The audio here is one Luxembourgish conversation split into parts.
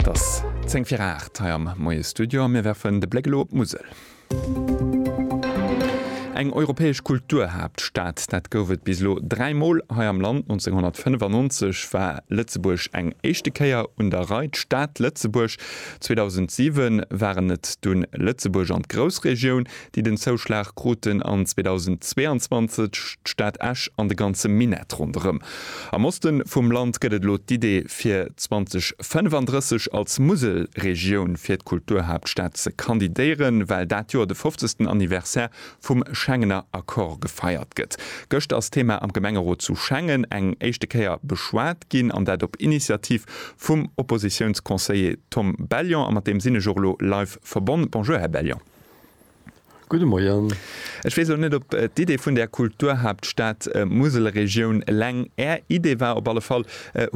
Et ass 10 vir 8 hei am Moie-Studio a mir werfen de Bléck elo op d'Musel. Eng europäesch Kulturhaaptstad, dat gouf et bis elo dräi Mol hei am Land. 1995 war Lëtzebuerg eng éischte Kéier un der Rei, d'Stad Lëtzebuerg. 2007 waren et dunn Lëtzebuerg an d'Groussregioun, déi den Zouschlag kruten an 2022 d'Stad Esch an de ganze Minett ronderëm. Am Oste vum Land gëtt et elo d'Idee fir 2035 als Muselregioun fir d'Kulturhaaptstad ze kandidéieren, well dat Joer de fofzegsten Anniversaire vum Schengener Accord gefeiert gëtt. Gëscht ass d'Thema am Gemengerot zu Schengen eng éischte Kéier beschwat ginn, an dat op Initiativ vum Oppositiounsconseiller Tom Bellion. A mat deem sinn ech och elo live verbonn. Bonjour Här Bellion. Gudde Moien. Ech weess elo net, ob d'Idee vun där Kulturhaaptstad Muselregioun eleng Är Idee war. Op alle Fall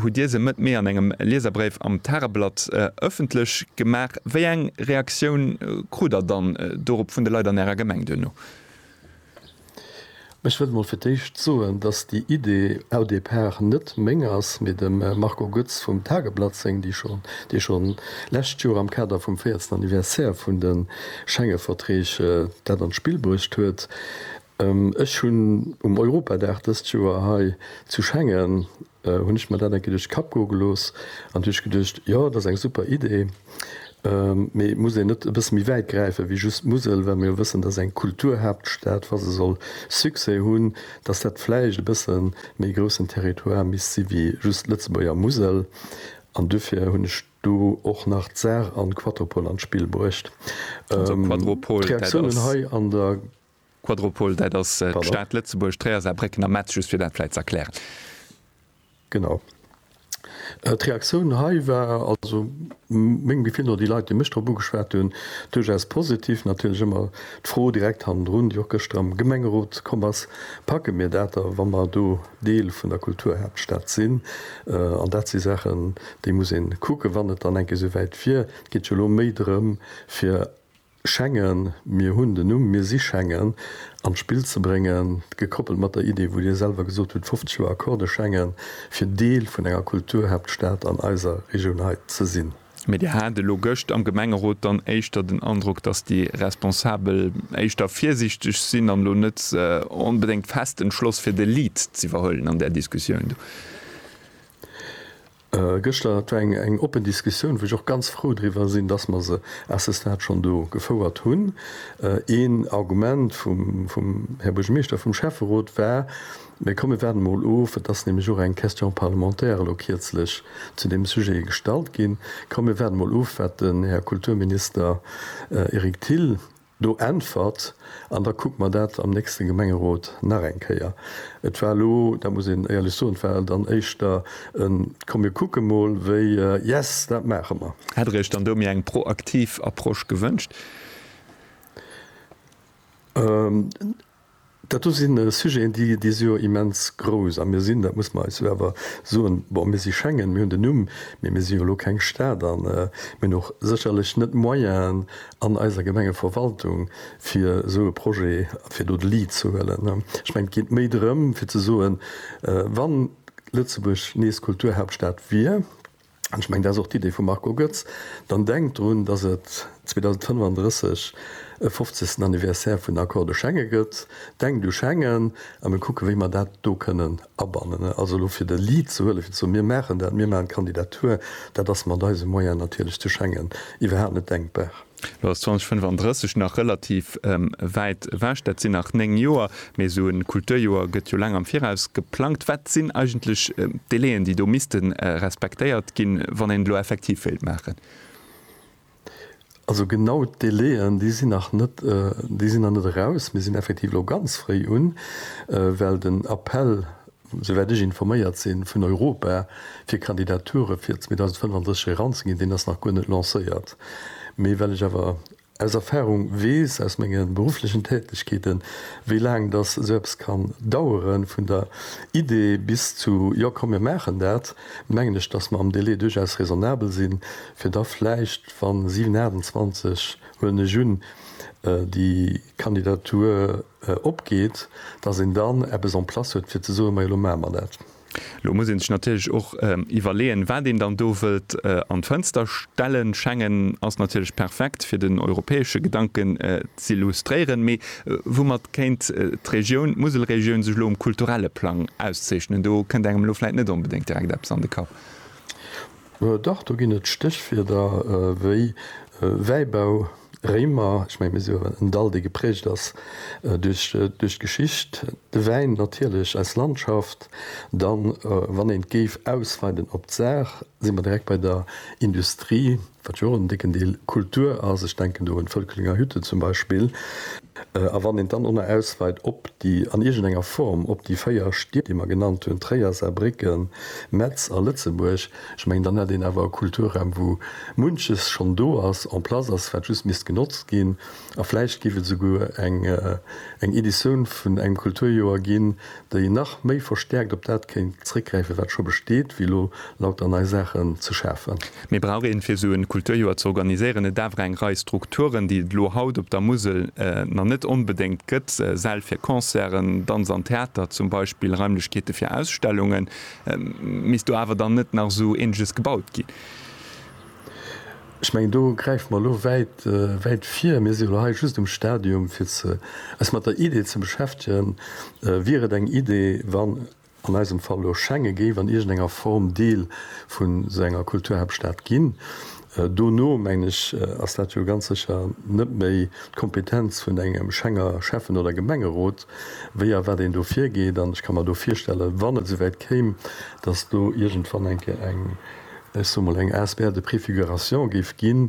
hutt Dir se Mëtt Mee an engem Lieserbréif am Tageblatt ëffentlech gemaach. Wéi eng Reaktioun krut Der dann dorop vun de Leit an Ärer Gemeng duerno? Ech wëll emol fir d'éischt soen, dass déi Idee au départ net meng ass, mee dem Marco Goetz vum Tageblatt seng, dee scho lescht Joer am Kader vum véiertsten Anniversaire vun de Schengeverträg dat an d'Spill bruecht huet. Ech hunn um Europadag dëst Joer hei zu Schengen Hunn ech mer dat eng Kéier duerch de Kapp goe gelooss an hu ech geduecht, jo, dat ass eng super Idee, mee muss een net e bësse méi wäit gräifen, wéi just d'Musel, well mer jo wëssen, dass eng Kulturhaaptstad, wa se soll Succès hunn, dass dat vläicht e bësse méi groussen Territoire misst si wéi just d'Lëtzebuerger Musel. An duerfir hunn ech do och nach d'Saar an d'Quatropol an d'Spill bruecht. D'Reaktiounen hei an der. Quadropol, dat ass d'Stad Lëtzebuerg, Tréier, Saarbrécken a Metz, just fir dat vläit ze erklären. Genau. D'Reaktioun hei war, also mengem Gefill no, déi Leit, déi mech drop ugeschwat hunn, duerchaus positiv. Natierlech ëmmer d'Fro direkt hannendrun, déi och gëschter am Gemengerot komm ass, Packe mir dat da, wa mer do Deel vun der Kulturhaaptstad sinn? An dat si Saachen, déi muss ee kucken, wann et dann eng Kéier esouwäit wier. Et geet jo elo méi drëm, fir Schengen, mir hunn den Numm, mir si Schengen, an d'Spill ze bréngen, gekoppelt mat der Idee, wou Dir selwer gesot hutt, 50 Joer Accordé Schengen, fir Deel vun enger Kulturhaaptstad an eiser Regioun hei ze sinn. Mee Dir hat elo gëscht am Gemengerot dann éischter den Androck, dass déi Responsabel éischter virsiichteg sinn an elo net onbedéngt fest entschloss fir de Lead z'iwwerhuelen an där Diskussioun do. Gëschter, dat war eng oppen Diskussioun, wou ech och ganz frou driwwer sinn, dass mer se à ce stade schonn do gefouert hunn. Een Argument vum Här Buergermeeschter, vum Schäfferot war, Mä komm, mir waarden emol of, et ass nämlech och eng Question parlementaire elo kierzlech zu deem Sujet gestallt ginn, komm, mir waarden emol of, wat den Här Kulturminister Eric Thill Do äntwert, an da kucke mer dat am nächste Gemengerot nach eng Kéier. Et war elo, dat muss een éierlech soen, et war dann éischter e komm mir kucke mol wéi yes, dat maache mer. Hätt Der Iech dann do méi eng proaktiv Approche gewënscht? Dat do si Sujeten, déi, déi si jo immens grouss. A mir sinn, dat muss mer eis jo awer soen, bon, mir si Schengen, mir hunn den Numm, mee mir si jo elo keng Stad an mir hunn och sécherlech net d'Moyenen an eiser Gemengeverwaltung, fir esou e Projet, fir do de Lead ze huelen. Ech mengen, et geet méi drëm, fir ze soen, Wann Lëtzebuerg nees Kulturhauptstad wier, an ech mengen, dat ass och d'Idee vum Marco Goetz, dann denkt drun, dass et 2035 e fofzegsten Anniversaire vun den Accords de Schengen gëtt, denkt u Schengen a mir kucken, wéi mer dat do kënnen abannen. Also elo fir de Lead ze huelen, fir ze soen, mir maachen dat, mir maachen d'Kandidatur, dat ass mat eise Moyene natierlech zu Schengen iwwerhaapt net denkbar. Lo ass 2035 nach relativ wäit ewech, dat sinn nach néng Joer, mee esou e Kulturjoer gëtt jo laang am Viraus geplangt. Wat sinn eigentlech d'Délaiën, déi do misste respektéiert ginn, wann een et elo effektiv wéilt maachen? Also genau d'Délaiën, déi sinn nach net, déi sinn nach net eraus. Mir sinn effektiv elo ganz fréi un, well den Appell souwäit ech informéiert sinn, vun Europa fir Kandidature fir 2035 eranzeginn, deen ass nach guer net lancéiert. Mee well ech awer aus Erfahrung weess, aus menge berufflechen Tätegkeeten, wéi laang datt esou eppes kann daueren, vun der Idee bis zu jo komm mir maachen dat, mengen ech, datt mer am Délai duerchaus raisonnabel sinn, fir da vläicht, wann 7, 28, huelen ech un, déi Kandidatur. opgeet, datt een dann eppes en place huet fir ze soen, majo, elo maache mer dat. Elo muss ee sech natierlech och iwwerleeën, wat een dann do wëllt an d'Fënster stellen. Schengen ass natierlech perfekt, fir den europäesche Gedanken z'illustréieren. Mee woumat kéint d'Regioun, d'Muselregioun, sech elo um kulturelle Plang auszeechnen? Do kënnt engem elo vläicht net onbedéngt direkt eppes an de Kapp. Dach, do ginn et Stéchwierder wéi Wäibau, Réimer, ech mengen, mir si jo en Dall, dee geprägt ass duerch d'Geschicht, de Wäin natierlech, eis Landschaft. Dann, wann een et géif ausweiden op d'Saar, si mer direkt bei der Industrie, wat jo och en décken Deel Kultur ass, ech denken do un d'Völklinger Hütte zum Beispill. A wann een dann och nach ausweit op déi, an iergendenger Form, op déi véier Stied, déi mer genannt hunn, Tréier, Saarbrécken, Metz a Lëtzebuerg, ech mengen, dann hätt een awer e Kulturraum, wou munches schonn do ass, en place ass, wat just misst genotzt ginn. A vläicht géif et esouguer eng Editioun vun engem Kulturjoer ginn, déi nach méi verstäerkt op dat kéint zréckgräifen, wat scho besteet, wéi elo lauter nei Saachen ze schafen. Mee brauch een, fir esou e Kulturjoer ze organiséieren, net awer eng Rei Strukturen, déi et elo haut op der Musel nach net onbedéngt gëtt, Säll fir Concerten, Danz an Theater zum Beispill, Raimlechkeete fir Ausstellungen? Misst do awer dann net nach esou Eeneges gebaut ginn? Ech mengen, do gräife mer elo wäit, wäit vir. Mir sinn elo hei just um Stadium, fir eis mat der Idee ze beschäftegen. Wier et eng Idee, wann an eisem Fall elo Schengen géif an iergendenger Form Deel vu sou enger Kulturhaaptstad ginn? Dono, mengen ech, ass dat jo ganz sécher net méi d'Kompetenz vun engem Schenger Schäffen oder Gemengerot. wéi a wat een do virgeet. An ech ka mer do virstellen, wann et souwäit kéim, datt do iergendwann eng, ech soe mol, eng asbl de préfiguration géif ginn,